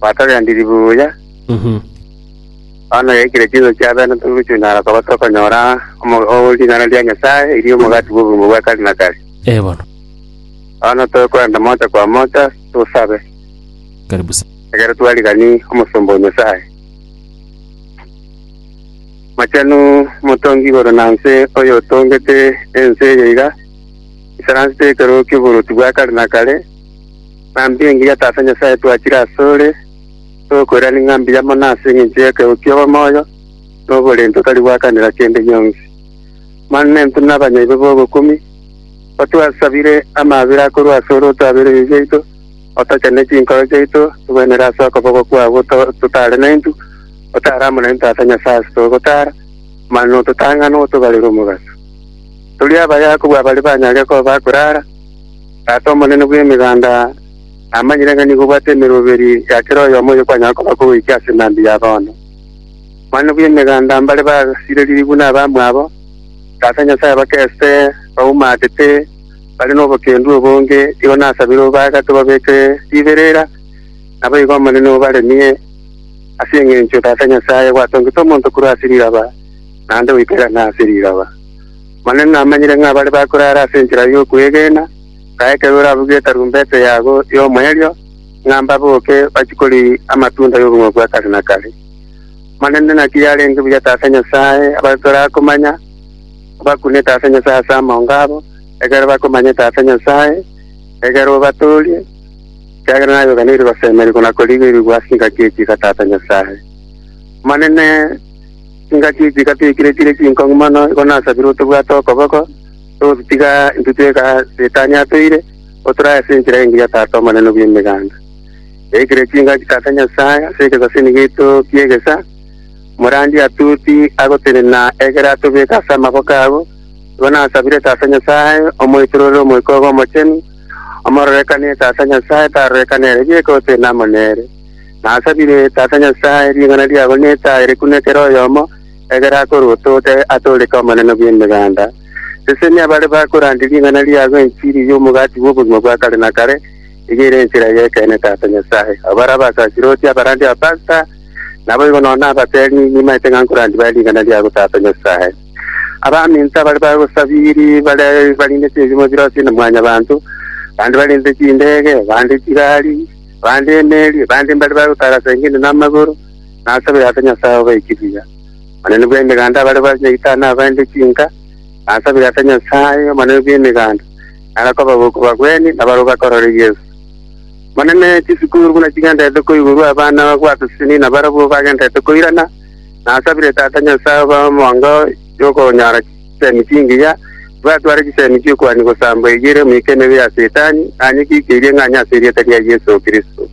Gwatogendirie buya. Bono yaikire chinsa chia bene togochundana koba tokonyora omo- o- ring'ana ria Nyasae, erio omogati bw'obogima bwa kare na kare. Ee bono. Bono tokorenda mocha kwa mocha tosabe, Karibu sana. ekero twarigani omosomba o Nyasae. Mochenu omotongi igoro na nse, oyo otongete ense eye iga isaransete ekerogo ki'oboruoti bwa kare na kare, Ng'ambi engiya Tata Nyasae twachire asore, tokoirana ing'ambi ya mono ase engencho y'ekegego ki'obomoyo na oborenti otari gwakanera kende gionsi. Manu nintwe na abanyaibo b'ogokumia, otwasabire amabera akorwa asore otwabere ebibe biaito, otochane chinkoro chiaito, togwenerere ase okoboko kwao totare naintwe, otare amo naintwe Tata Nyasae ase togotara, manu ototang'ane otobarere omobaso. Toria abaye akobua bare banyare koba akorara, Tata omonene bw'Emeganda namanyire ng'a nigo obwate emeroberi ya kera oyomo oyo kwanyara koba kogoika ase emambia ya bono. Omonene bw'Emeganda mbare basirerigwe nabamwabo, Tata Nyasae bakese baumatete bare nobokendu obonge, igo nasabire obagate obabeke riberera, naboigo Omonene obaremie, ase engencho Tata Nyasae gwatongete omonto korwa ase riraba, naende goika erane ase riraba. Manene namanyire ng'a bare bakorara ase enchera y'okwegena, ng'a ekero oravuge etarumbete yabo y'omoerio, ng'a mbaboke bachie koria amatunda y'obong'aini bwa kare na kare. Manene naki yarenge buya ase ase Nyasae abare torakomanya, obakunete ase Nyasae ase amongo abo, ekero bakomanyete ase Nyasae, ekero obatoorie, ekiagera naye oganeire gosemeria na korigerigwa ase engaki ekiiga Tata Nyasae. Manene, Chingaki echi gatiikire chire chinkong'u mono, igo nasabire otobwate okoboko, togositiga intwe tweka Setani atoire, otorae ase enchera engiya Tata Omonene bw'Emeganda. Yaikire chingaki Tata Nyasae ase egesasini giaito ki'egesa, morandi atuti agotenena egere atobeke ase amaboko abo, igo nasabire Tata Nyasae omoitororere Omoika obe omochenu, omororekanie Tata Nyasae tarorekane ere bieka otenena amo nere. Nasabire Tata Nyasae ring'ana riabo netaare kune kera oyomo, egere akorwe otote atooreke Omonene bw'Emeganda. Sesenia abare bakorandia ring'ana riago enchiri y'omogati bw'obogima bwa kare na kare, eyio ere enchera y'ekeene Tata Nyasae. Abo bare abasasiroti, abarandi, abapasta, naboigo nonya nabateeri, nimaete ng'a nkorandia bare ring'ana riago Tata Nyasae. Abaminto abare bagosabiri bare barindeti ebiimo birosire na mwanyabanto, bande barindete chindege, bande chigari, bande emeeri, bande mbare bagotara seng'eni namagoro, na ase baya ase Nyasae obaiki buya. Omonene bw'Emeganda abare bare nyaitari nabaende chinka, na ase baya ase Nyasae, Omonene bw'Emeganda, nare akobagoko bagwenie, na barabwo bakorore Yeso. Omonene, chisukuru buna chigendererete koigurwa, abana bagwatosini, na barabwo bagendererete koirana, na ase bire Tata Nyasae obae omonga y'okonyora chisemi chingiya, tibatware chisemi chi'okuani gosambwa eyio ere omoikenereri ya Setani, aye kikeirie ng'a anye ase erieta ria Yeso Kristo.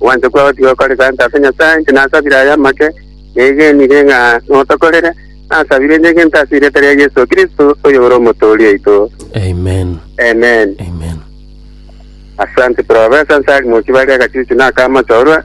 Ogwancha kwao tigokore gante ase Nyasae, inche nasabire aya amake, negenire ng'a notokorere, nasabire inche gento ase erieta ria Yeso Kristo, oyore Omotoori oito. Amen. Amen. Amen. Asante Professor, nse ari mochie bare agachuchu na akamatorwa.